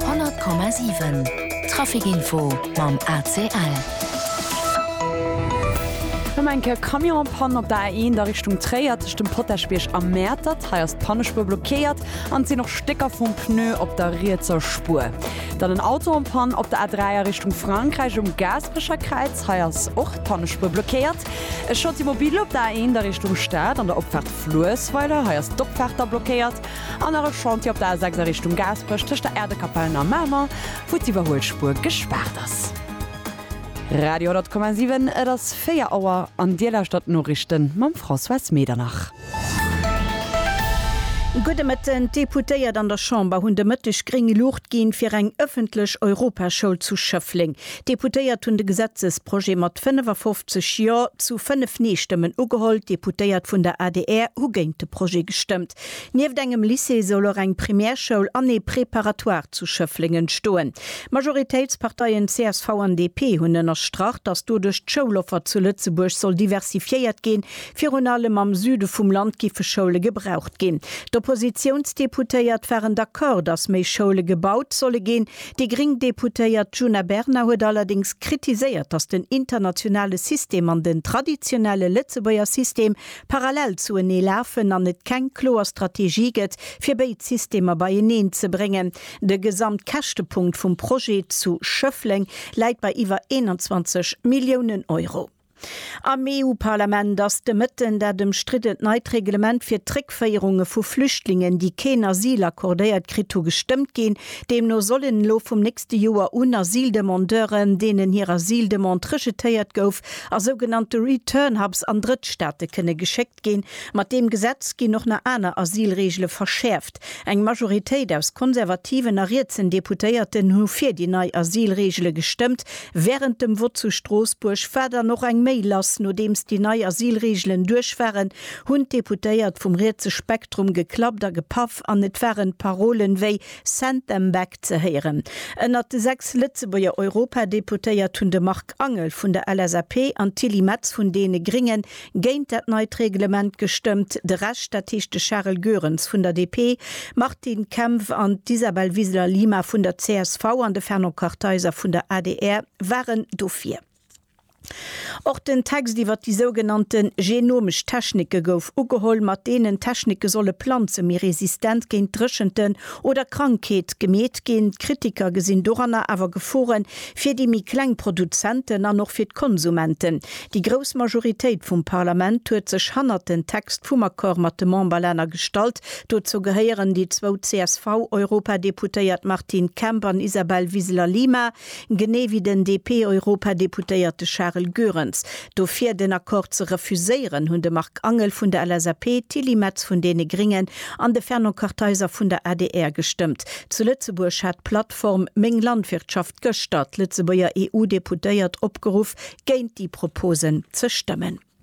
100,7 Trafic Info mam ACL. Ëm eng Kéier Camionspann op der A1 a Richtung Tréier tëscht dem Potaschbierg a Mäertert. Hei ass d'Pannespuer blockéiert an et sinn och Stécker vum Pneu op der rietser Spuer. Dann en Auto en Panne op der A3 a Richtung Frankräich um Gaasperecher Kräiz. Hei ass och d'Pannespuer blockéiert. E Chantier mobile op der A1 a Richtung Stad an der Opfaart Fluessweiler. Hei ass d'Opfaart da blockéiert. An nach e Chantier op der A6 a Richtung Gaasperech tëscht der Äerdekapellen a Mamer, wou d'Iwwerhuelspuer gespaart ass. Radio 10,7, et ass 4 Auer an Dir lauschtert d'Noriichten mam Françoise Medernach. Gudde Mëtten, D'Deputéiert an der Chamber hunn de Mëtteg gréng Luucht ginn, fir eng ëffentlech Europaschoul zu Schëffleng. D'Deputéiert hunn de Gesetzesprojet mat 55 Jo zu 5 Nee-Stëmmen ugeholl. D'Deputéiert vun der adr hu géint de Projet gestëmmt. Nieft engem Lycée soll och eng Primärschoul an ee Préparatoire zu Schëfflingen stoen. D'Majoritéitsparteien csv an DP hunn ënnerstrach, datt doduerch d'Schouloffer zu Lëtzebuerg soll diversifiéiert ginn. Virun allem am Süde vum Land giffe Schoule gebraucht ginn. D'Oppositiounsdeputéiert waren d'accord, datt méi Schoule gebaut solle ginn. Déi gréng Deputéiert Djuna Bernard huet allerdéngs kritiséiert, datt den internationale System an den traditionelle Lëtzebuerger System parallel zu enee lafen an et keng kloer Strategie gëtt, fir béid Systemer beieneen ze bréngen. De Gesamtkäschtepunkt vum Projet zu Schëffleng läit bei iwwer 21 Milliounen Euro. Am EU-Parlament ass de Mëtten dat ëmstriddent neit Reglement fir d'Réckféierunge vu Flüchtlingen, déi keen Asyl accordéiert kritt hu, gestëmmt ginn. Deemno sollen elo vum nächste Joer un Asyldemandeuren, deenen hir Asyldemande rejetéiert gouf, a sougenannte Return Hubs an Drëttstaate kënne geschéckt ginn. Mat deem Gesetz ginn och nach aner Asylreegele verschäerft. Eng Majoritéit aus konservativen a rietsen Deputéierten hu fir déi nei Asylreegele gestëmmt. Wärend dem Vott zu Stroossbuerg war dann och eng méi lass. Nodeems déi nei Asylreegelen duerch waren, hunn d'Deputéiert vum rietse Spektrum geklappt a gepaff an et waren Parolen wéi Send Them Back ze héieren. Ënnert de sechs Lëtzebuerger Europadeputéiert hunn de Marc Angel vun der LSAP an d'Tilly Metz vun deene Grénge géint dat neit Reglement gestëmmt, de Rescht, dat heescht de Charel Goerens vun der DP, d'Martine Kempf an d'Isabel Wiseler-Lima vun der csv an de Fernand Kartheiser vun der adr waren dofir. Och den Text iwwer déi sougenannte genomesch Technike gouf ugeholl, mat deenen d'Technike solle Planze méi resistent géint Dréchenten oder Krankheet gemeet ginn. D'Kritiker gesinn doranner awer Gefore fir déi méi kleng Produzenten an och fir d'Konsumenten. Déi grouss Majoritéit vum Parlament huet sech hannert den Text vum Accord mat de Memberlänner gestallt. Dozou gehéieren déi zwou CSV-Europadeputéiert Martine Kemp an Isabel Wiseler-Lima. Genee wéi den DP-Europadeputéierte Charel Goerens. Dofir den Accord ze refuséieren, hunn de Marc Angel vun der LSAP, d'Tilly Metz vun deene Gringen an de Fernand Kartheiser vun der adr gestëmmt. Zu Lëtzebuerg hat d'Plattform Meng Landwirtschaft gëschter d'Lëtzebuerger EU-Deputéiert opgeruff, géint déi Propose ze stëmmen.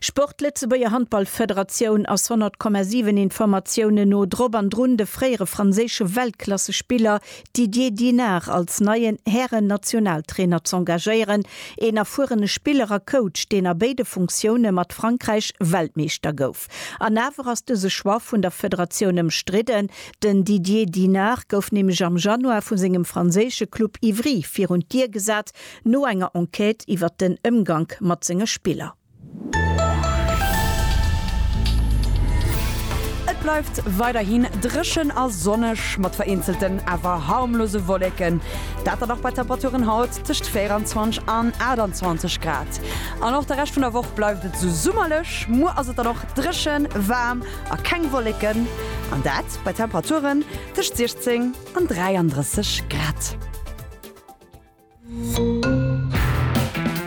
Sport, Lëtzebuerger Handballfederatioun ass 100,7 Informatiounen no drop an drun, de fréiere franséische Weltklassespiller Didier Dinard als neien Hären-Nationaltrainer z'engagéieren. Een erfuerene Spiller a Coach, deen a béide Funktioune mat Frankräich Weltmeeschter gouf. An awer ass dëse Choix vun der Federatioun ëmstridden. Den Didier Dinard gouf nämlech am Januar vu sengem franséische Club Ivry virun d'Dier gesat, No enger Enquête iwwert den Ëmgank mat senge Spiller. Et bleift weiderhin dréchen a sonneg, mat vereenzelten awer harmlose Wolleken, dat dann och bei Temperaturen haut tëscht 24 an 28 Grad. An och de Rescht vun der Woch bleift et esou summerlech, muer ass et dann och dréchen, waarm a keng Wolleken, an dat bei Temperaturen tëscht 16 an 33 Grad.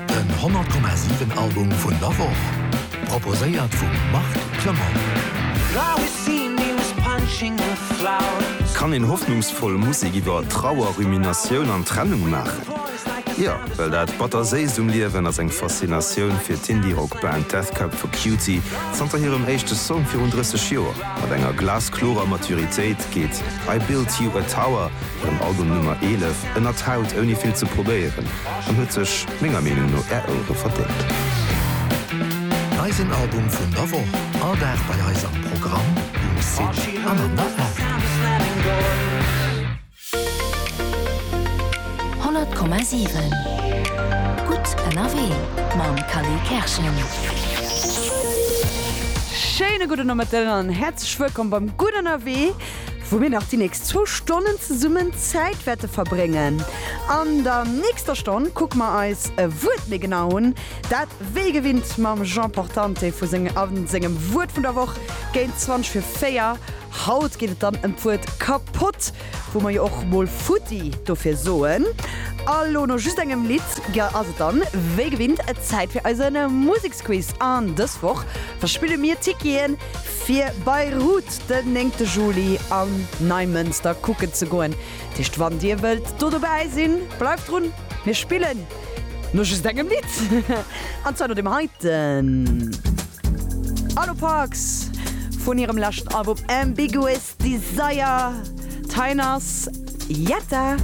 Den 100,7 Album vun der Woch, proposéiert vum Marc Clement. Kann een hoffnungsvoll Musek iwwer Trauer, Ruminatioun an Trennung maachen? Jo, well dat Batterséist um Liewen ass eng Faszinatioun fir d'Indie-Rock-Band Death Cab for Cutie. Zanter hirem éischte Song virun 30 Joer mat enger glasklorer Maturitéit geet I Built You a Tower, Hiren Album Nummer 11 ënnert d'Haut ouni vill ze probéieren an huet sech menger Meenung no Är Ouere verdéngt. Eisen Album vun der Woch, all Dag bei eis am Programm, um Site an an der App. 100,7 Gutt ënnerwee mam Cally Kerschen. Schéine gudde Nomëtten an häerzlech wëllkomm beim Gutt ënnerwee. wou mir nach déi nächst zwou Stonnen zesummen Zäit wäerte verbréngen. An der nächster Stonn kucke mer eis e Wuert méi genau un, dat wéi gewinnt mam Jean Portante vu seng a sengem Wuert vun der Woch géint 20 fir 4. Haut geet et dann ëm d'Wuert kapott, wou mer jo och mol futti dofir soen. A lo no just engem Lidd ass et dann wéi gewinnt Zäit fir eise Museksblock. Squiz an dës Woch verspille mir Ticketen fir Beirut den néngte Juli an Neimënster kucken ze goen. Dat heescht wann dir wëllt do dobäi sinn, bleift drun, mir spillen no just engem Lidd an zwar no dem heiten Arlo Parks vun hirem leschten Album Ambiguous Desire. D'Heienn ass Jetta.